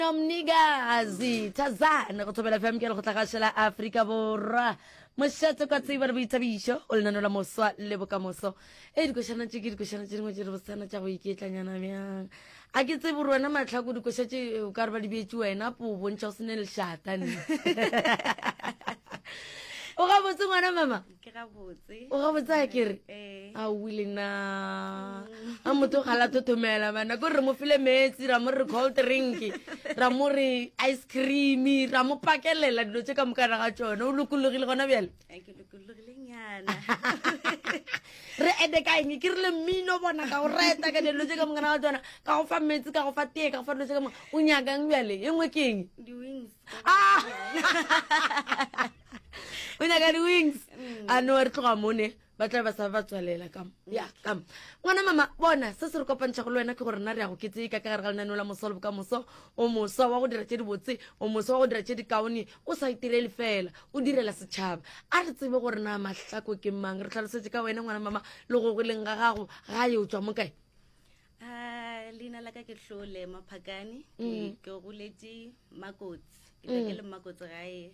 Mna mnikazi thazane go thobela fm ke le go tlagašela aforika borwa mošate kwa tsebo re boithabišo o lenano la moswa le bokamoso e dikošana tše ke dikošana tše dingwe tše re bosana tša go iketlanyana bjang a ke tsebo gore wena matlhako dikoša tše o ka re ba di beetse wena po o bontšha o se ne lešata ne o gabotse ngwana mama ke gabotse o gabotse a ke re eh. a o wile na a motho ga la thothomela bana ko re mo file metsi ra mo re cold drink ra mo re ice cream ra mo pakelela dilo tse ka mokana ga tsone o lokologile gona bjale eh, re ete ka eng ke rile mmino bona ka go reta ka dilo tse ka mokana ga tsona ka go fa metsi ka go fa tee ka go fa dilo tse ka mo o nyakang bjale e nngwe ke eng ah! o nyaka di-wings mm. a no re tloga mone ba tla ba sa ba tswalela kam ya kam ngwana mama bona se se re kopantšha go le wena ke gore na re ya go ketsee ka ka gare ga lenaneo la moso le boka moso o moso wa go dira tše dibotse o moso wa go dira tše dikaone o sa itirele fela o direla setšhaba a re tsebe gore na mahlako ke mang re tlhalosetse ka wena ngwana mama le go go leng ga gago ga ye o tswa mo kae ah, leina la ka ke tlhole maphakane mm. ke goletse makotsi ke mm. le makotsi gae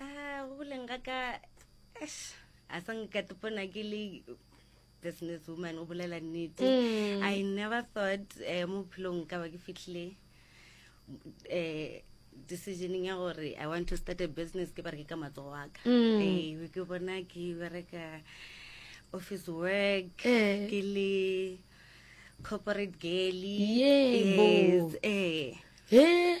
Ah, go boleng ga ka eish, a sa nkatepona ke le business woman o bolela nnete Mm. i never thought um mo bophelong ka ba ke fitlhile um decisioning ya gore i want to start a business ke bereke ka matsogo wa ka Mm. Eh, be ke bona ke bereka office work Eh. ke le corporate girly Yebo. yes eh he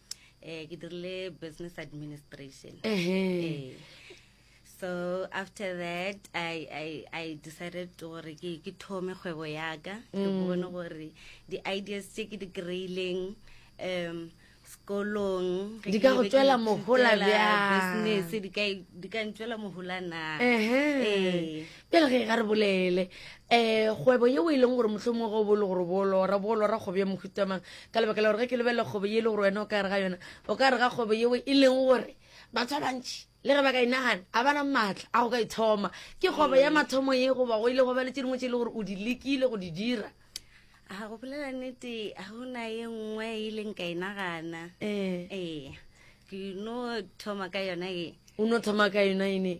eh ke dirile business administration eh so after that i i i decided to gore ke ke thome kgwebo ya ka ke mm. bone gore di ideas tse ke di kreileng um sekolong di ka go tswela mohola bjang business di ka di ka ntswela mohola na eh pele ge ga re bolele um kgwebo yeo e leng gore motlho mongwe go bolo gore bolora bolora kgwebo ya mohutamang ka lebaka la gore ge ke lebelela kgwebo ye e le gore wena o ka re ga yona o ka re ga kgwebo yeo e leng gore batho ba bantšhi le ge ba ka e nagana a bana maatla a go ka e thoma ke kgwebo ya mm. mathomo ye goba go ile go ba le tse dingwe tse e le gore o di lekile go di dira a go bolela nete ga gona ye nngwe e leng ka e nagana ee eh. eh. ke no thoma ka yona e o no thoma ka yona ene